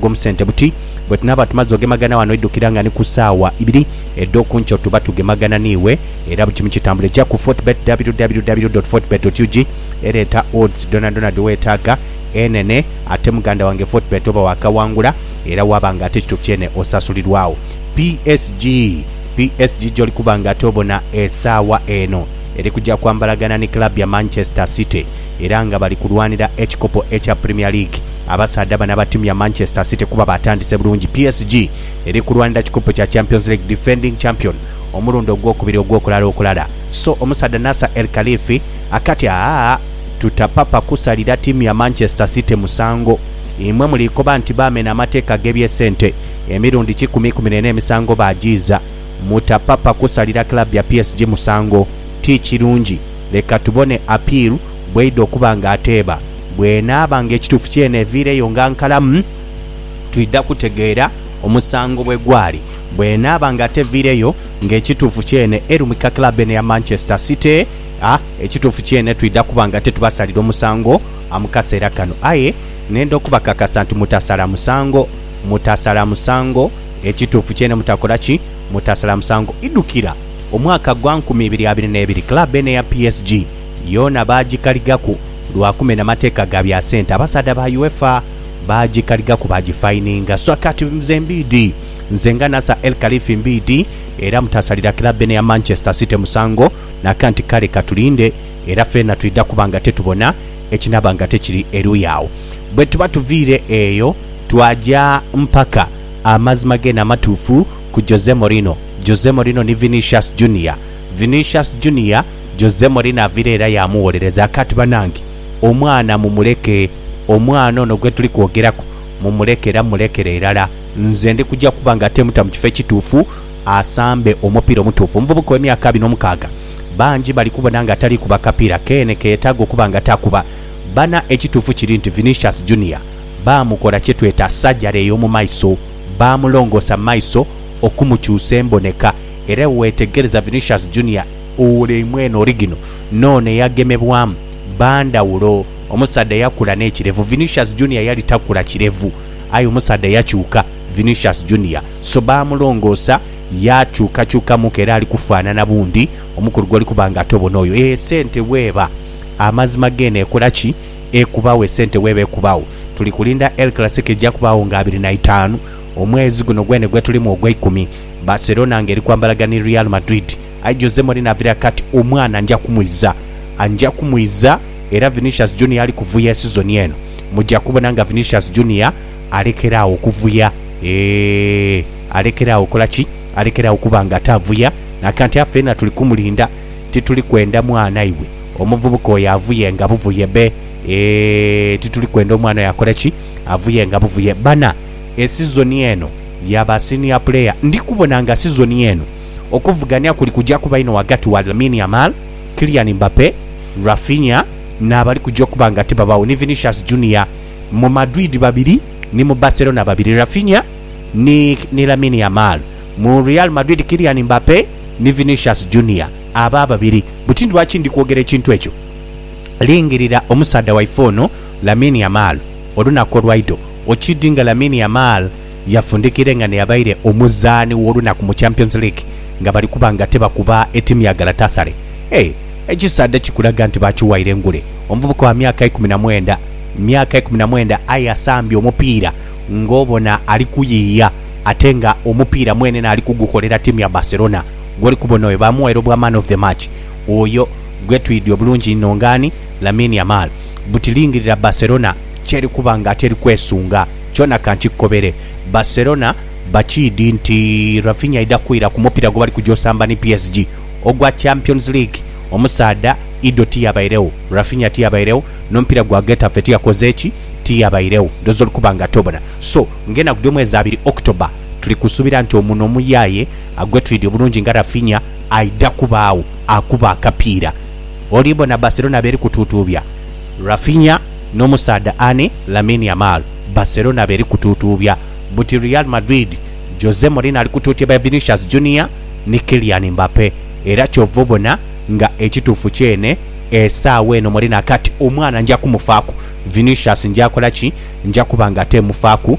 ag'omu sente buti, Bwe tunaaba tumaze ogemagana wano, idhukira nga ni ku saawa ibiri edh'okunkyo tuba tugemagana n'iwe, era buli kimu kitambule. Ja ku Fortebet, www dot fortebet dot ug, era eta odds dhoonadhoona dhe weetaaga enhenhe. Ate muganda wange, Fortebet oba waakaghangula era waaba nga ate kituufu kyene osasulirwagho PSG. PSG gy'oli kuba nga ate obona esaawa eno eri kugya kwambalagana ni club ya Manchester City. Era nga bali kulwanira ekikopo ekya Premier League, abasaadha bano aba tiimu ya Manchester City kuba batandise bulungi, PSG eri kulwanira kikopo kya Champions League Defending Champion omulundi ogwokubiri ogwokulala okulala so omusaadha Nasser El Khalifi akati aah tutapapa kusalira tiimu ya Manchester City musango imwe mulikoba nti bamena amateeka agebyesente emirundi kikumi ikumi nena emisango bajiiza mutapapa kusalira club ya PSG musango tikirungi. Leka tubone Apir bw'eidha okuba nga ateeba. Bw'enaaba nga ekituufu kyene eviireyo nga nkalamu, twidha kutegeera omusango bwe gwali. Bw'enaaba nga teviireyo nga ekituufu kyene erumika club eno eya Manchester City, a ekituufu kyene twidha kuba nga tetubasalira omusango a mu kaseera kano. Aye nenda okubakakasa nti mutasala musango. Mutasala musango. Ekituufu kyene mutakola ki? Mutasala musango. Idhukira! Omwaka gwa nkumi ibiri abiri n'ebiri, club eno eya PSG yoona baagikaligaku lwa kumena mateeka ga bya sente. Abasaadha ba UEFA baagikaligaku baagifayininga. So kati nze Mbiidi, nze nga Nasser El Khelaifi Mbiidi era mutasalira club eno eya Manchester City musango naka nti kale katulinde era feena twidha kuba nga tetubona ekinaaba nga tekiri eruuyi agho. Bwetuba tuviire eyo, twaja mpaka amazima geene amatuufu. ku Jose Mourinho, Jose Mourinho ni Vinicius Junior, Vinicius Junior, Jose Mourinho avire era yaamugholereza. Kati banange, omwana mumuleke. Omwana ono gwe tuli kwogeraku mumuleke era mulekere irala. Nze ndi kuja kuba nga temuta mu kifo ekituufu asambe omupiira omutuufu. Omuvubuka ow'emyaka abiri n'omukaaga bangi bali kubona nga tali kuba kapiira keene ke yetaaga okuba nga takuba. Bana ekituufu kiri nti Vinicius Junior baamukola kye tweta surgery ey'omu maiso. baamulongoosa maiso okumukyusa emboneka. Era bwe weetegereza Vinicius Junior oule mwenhe origino n'ono eyagemebwamu, ba ndhawulo. Omusaadha yakula n'ekirevu, Vinicius Junior yali takula kirevu. Aye omusaadha yakyuka, Vinicius Junior so baamulongoosa yaakyukakyukamuku era ali kufaanana bundi omukulu gw'oli kuba nga tobona oyo. Eeh, sente bw'eba! Amazima geene ekola ki? ekubagho esente weeba ekubagho. Tuli kulinda El Clasico eja kubagho nga abiri na itaanu omwezi guno gwene gwetulimu ogweikumi. Barcelona nga eri kwambalagana ni Real Madrid aye Jose Mourinho avire akati omwana nja kumwiza nja kumwiza era Vinicius Junior ali kuvuya esizoni eno muja kubona nga Vinicius Junior alekera agho okuvuya eeh alekera agho okola ki alekera agho okuba nga atavuya nakanti afe ena tuli kumulinda Tituli kwenda mwana iwe omuvubuka oyo avuyenga buvuye be eeh tituli kwenda omwana oyo akole ki avuyenga buvuye bana esizoni eno ya ba senior player ndi kubona nga sizoni eno okuvugania kuli kuja kuba inho wagati wa Lamine Yamal, Kylian Mbappe, Raphinha nabali kuja okuba nga tibabagho ni Vinicius Junior mu Madrid babiri ni mu Barcelona babiri Raphinha ni ni Lamine Yamal. Mu Real Madrid, Kylian Mbappe ni Vinicius Junior abo ababiri. Buti ni lwaki ndi kwogera ekintu ekyo. Lingirira omusaadha waife ono Lamine Yamal olunaku olwaidho. Okiidhi nga Lamine Yamal yafundikire nga n'eyabaire omuzaani w'olunaku mu Champions League nga bali kuba nga tebakuba etiimu ya Galatasaray? Hey, ekisaadha kikulaga nti baakiwaire engule. Omuvubuka wa myaka ikumi na mwenda, myaka ikumi na mwenda aye asambye omupiira ng'obona ali kuyiiya. ate nga omupiira mwene n'ali kugukolera ttiimu ya Barcelona gw'oli kubona oyo baamughaire obwa Man of the Match. Oyo gwe twidhi obulungi inho ng'ani? Lamine Yamal. Buti lingirira Barcelona ky'eri kuba nga ate eri kwesunga. Kyona ka nkikukobere, Barcelona bakiidhi nti Raphinha aidha kwira ku mupiira gwe bali kugya osamba ni PSG ogwa Champions League. Omusaadha Ido tiyabairegho, Raphinha tiyabairegho, n'omupiira gwa Getafe tiyakoze ki? Tiyabairegho. Ndhooza oli kuba nga ate obona. So. Ng'enaku dh'omwezi abiri October, tuli kusuubira nti omuno omuyaye gwetwidhi obulungi nga Raphinha aidha kubaagho akuba akapiira. Olibona Barcelona beri kutuutuubya Raphinha n'omusaadha ani Lamine Yamal. Barcelona beri kutuutuubya buti Real Madrid, Jose Mourinho ali kutuutya by Vinicius Junior ni Kylian Mbappe era kyova obona. nga ekituufu kyene esaawa eno mweri na kati omwana nja kumufaaku, Vinicius nja kola ki? Nja kuba nga teemufaaku.